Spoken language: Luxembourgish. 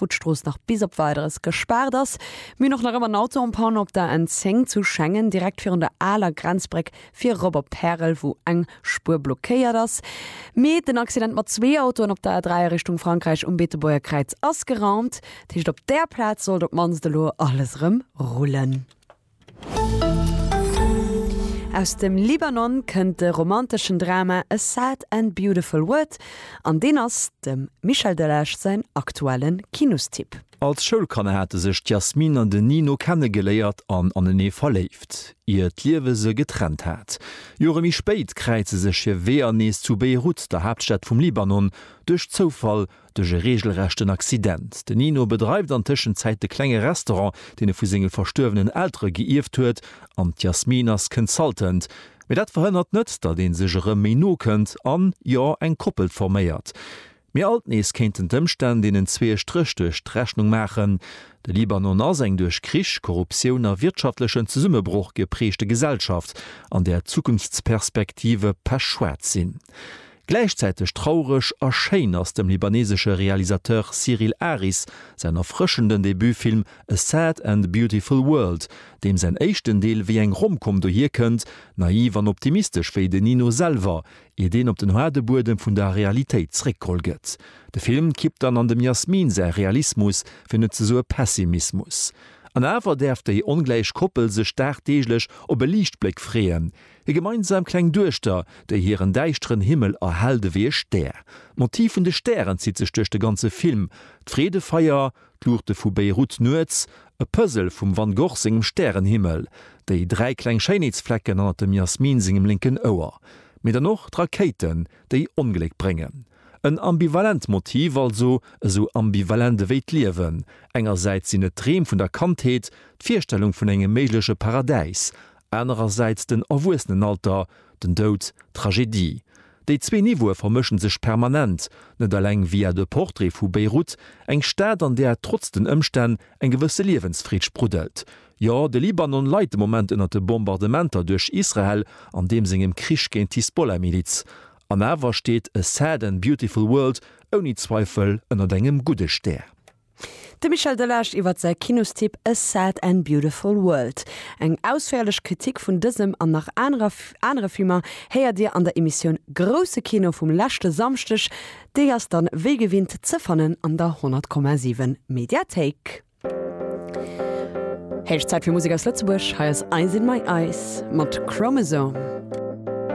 wou d'Strooss nach bis op Weideres gespaart ass. Mir hunn och nach ëmmer en Auto en panne op der N10 zu Schengen, direkt virun der aler Grenzbréck fir erop op Pärel, wou eng Spuer blockéiert ass. Mee den Accident mat zwee Autoen op der A3 a Richtung Frankräich um Beetebuerger Kräiz ass geraumt. Dat heescht, op där Plaz sollt op d'mannst elo alles erëm rullen. Aus dem Libanon kënnt de romanteschen Drama A Sad and Beautiful World an deen ass dem Michel Delage säin aktuelle Kinostipp. Als Schoulkanner hate sech d'Yasmine an den Nino kennegeléiert an anenee verléift, ier d'Liewe se getrennt hat. Jore méi spéit kräize sech hir Weeër nees zu Beirut, der Haaptstad vum Libanon, duerch Zoufall duerch e reegelrechten Accident. De Nino bedreift an Tëschenzäit de klenge Restaurant, deen e vu senge verstuerwenen Eltere geierft huet, an d'Yasmine ass Consultant. Mee dat verhënnert net, datt ee sech erëm méi no kënnt an, jo, eng Koppel forméiert. Mee alt nees kéinten d'Ëmstänn deenen zwee e Stréch duerch d'Rechnung maachen. De Libanon ass eng duerch Krich, Korruptioun a wirtschaftlechen Zesummebroch gepreegte Gesellschaft, an där d'Zukunftsperspektive pechschwaarz sinn. Gläichzäiteg traureg a schéin ass dem libanesesche Realisateur Cyril Aris säin erfrëschenden Debutfilm A Sad and Beautiful World, deem säin éischten Deel wéi eng Rom-Com dohier kënnt, naiv an optimistesch wéi den Nino selwer, ier deen op den haarde Buedem vun der Realitéit zréckgeholl gëtt. De Film kippt dann an dem Yasmine säi Realismus, fir net ze soe Pessimismus. An awer däerf déi ongläich Koppel sech dagdeeglech op e Liichtbléck freeën, Hir gemeinsam kleng Duechter, déi hiren däischteren Himmel erhellt ewéi e Stär. D'Motiv vun de Stären zitt sech duerch de ganze Film, d'Freedefeier, d'Luuchte vu Beirut nuets, e Puzzle vum Van Gogh sengem Stärenhimmel, déi dräi kleng Schéinheetsflecken hannert dem Yasmine sengem lénken Ouer, mee dann och d'Rakéiten, déi Ongléck bréngen. En ambivalent Motiv also, esou ambivalent ewéi d'Liewen. Engersäits sinn et d'Dreem vun der Kandheet, d'Virstellung vun engem méigleche Paradäis, anerersäits den Erwuessenenalter, den Doud, d'Tragedie. Déi zwee Niveaue vermëschen sech permanent, net eleng via de Portrait vu Beyrouth, eng Stad an där trotz den Ëmstänn eng gewësse Liewensfreed spruddelt. Jo, de Libanon leit de Moment ënnert de Bombardementer duerch Israel an deem sengem Krich géint d'Hisbollah-Miliz. An awer steet A Sad and Beautiful World ouni Zweifel ënnert engem gudde Stär. De Michel Delage iwwer säi Kinostipp A Sad and Beautiful World. Eng ausféierlech Kritik vun dësem an nach anerer anere Filmer héiert Dir an der Emissioun Grousse Kino vum leschte Samschdeg. Déi ass dann wéi gewinnt ze fannen an der 100,7 Mediathéik. Héich Zäit fir Musek aus Lëtzebuerg. Hei ass Eyes in My Eyes mat Chromosome.